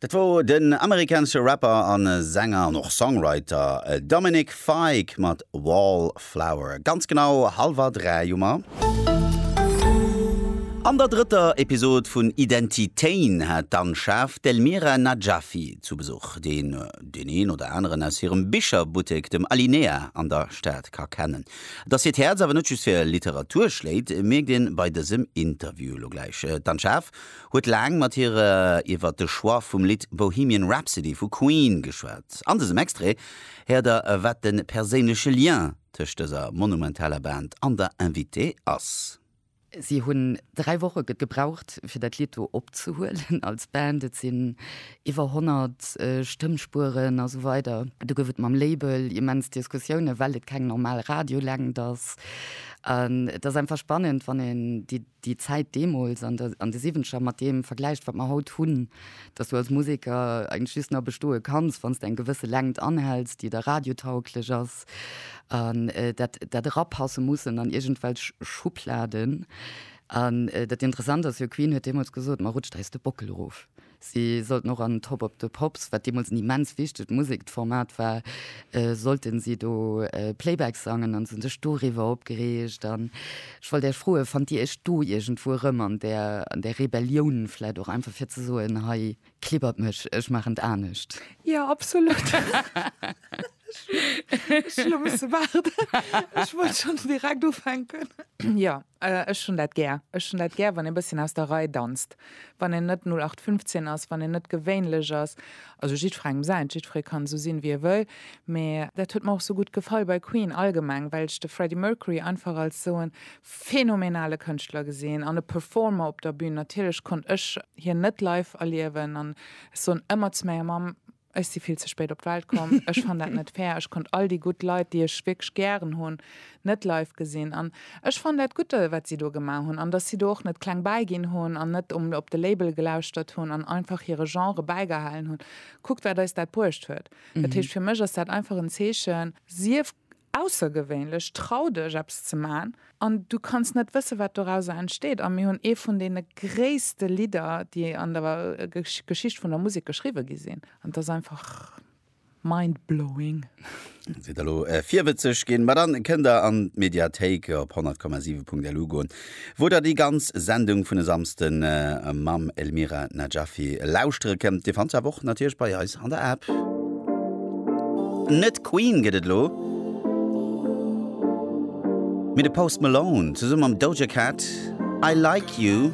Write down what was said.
Dat wor den amerikanesche Rapper a Sänger an och Songwriter Dominic Fike mat Wallflower. Ganz genau hallwer dräi hu mer. An der drëtter Episod vun Identitéin hat d'Anne Schaaf d'Elmira Najafi zu Besuch, deen deen een oder aneren aus hirem Bicherbuttek, dem Alinea, an der Stad ka kennen. Dass hiert Häerz awer net just fir Literatur schléit, mierkt een bei dësem Interview elo gläich. D'Anne Schaaf huet laang mat hir iwwert de Choix vum Lidd Bohemian Rhapsody vu Queen geschwat. An dësem Extrait héiert der, wat de perséinleche Lien tëscht dëser monumentaler Band an der Invitée ass. Si hunn dräi Woche gebraucht, fir dat Lidd do opzehuelen als Band. Et sinn iwwer 100 Stëmmspueren a sou weider. Do gouf et mam Label immens Diskussiounen, well et keng normal Radiolängt ass. An et ass einfach spannend, wann een déi Zäit deemools an de Siwwenzeger mat deem vergläicht, wat mer haut hunn, dass du als Museker eigentlech just nach bestoe kanns, wann s de eng gewësse Längt anhäls, déi da radiotauglech ass. passt an dat dat erapasse mussen an irgendwelch Schubladen an dat interessant ass jo Queen huet deemools gesot ma rutscht eis de Bockel erof. Si sollten och an Top Of The Pops, wat deemools en immens wichtegt Musekformat war, sollten si do Playback sangen an se hunn sech doriwwer opgereegt an ech wollt Iech froen, fannt Dir Iech do iergendwou erëm an där an där Rebellioun vläicht och einfach fir ze soen hei Klibbert mech, ech maachen et anescht. Ja, absolut. Ech elo musse waarden. Ech wollt schonns direkt ufänken. Jo, ech hunn dat gär. Ech hunn dat gär, wann ee bësschen aus der Rei danzt, wann een net 0815 ass, wann een net gewéinlech ass. Also jiddwerengem säint, jiddweree kann esou sinn, wéi e wëll. Mee dat huet mer och esou gutt gefall bei Queen allgemeng, well ech de Freddie Mercury einfach als esou e phänomenale Kënschtler gesinn an e Performer op der Bühn. Natierlech konnt ech hien net live erliewen an ech soen ëmmer zu menger Mamm, ech si vill ze spéit op d'Welt komm, ech fann dat net fair, ech konnt all déi gutt Leit, déi ech wierklech gären hunn, net live gesinn. An ech fann dat gutt, wat si do gemaach hunn an dass si do och net kleng bäiginn hunn an net op de Label gelauschtert hunn an einfach hire Genre bäigehalen hunn. Kuckt, wat eis dat bruecht huet. Dat heescht, fir mech ass dat einfach en Zeechen, sief Aussergewéinlech, trau dech eppes ze man an du kanns net wësse wat dorauser entsteet. A mir hunn ee vun deene gréisste Lidder déi an der Geschicht vun der Musek geschriwwe gi sinn. An et ass einfach mind blowing. Sidd der elo virwëtzeg ginn? Ma dann kënnt der an d'Mediathéik op 100,7.lu goen. Wou der déi ganz Sendung vun e Samsden mam Elmira Najafi lauschtere kënnt, dir fannt se awer och natierlech bei eis an der App. Net Queen gëtt et elo, mee de Post Malone zesumme mam Doja Cat, I Like You.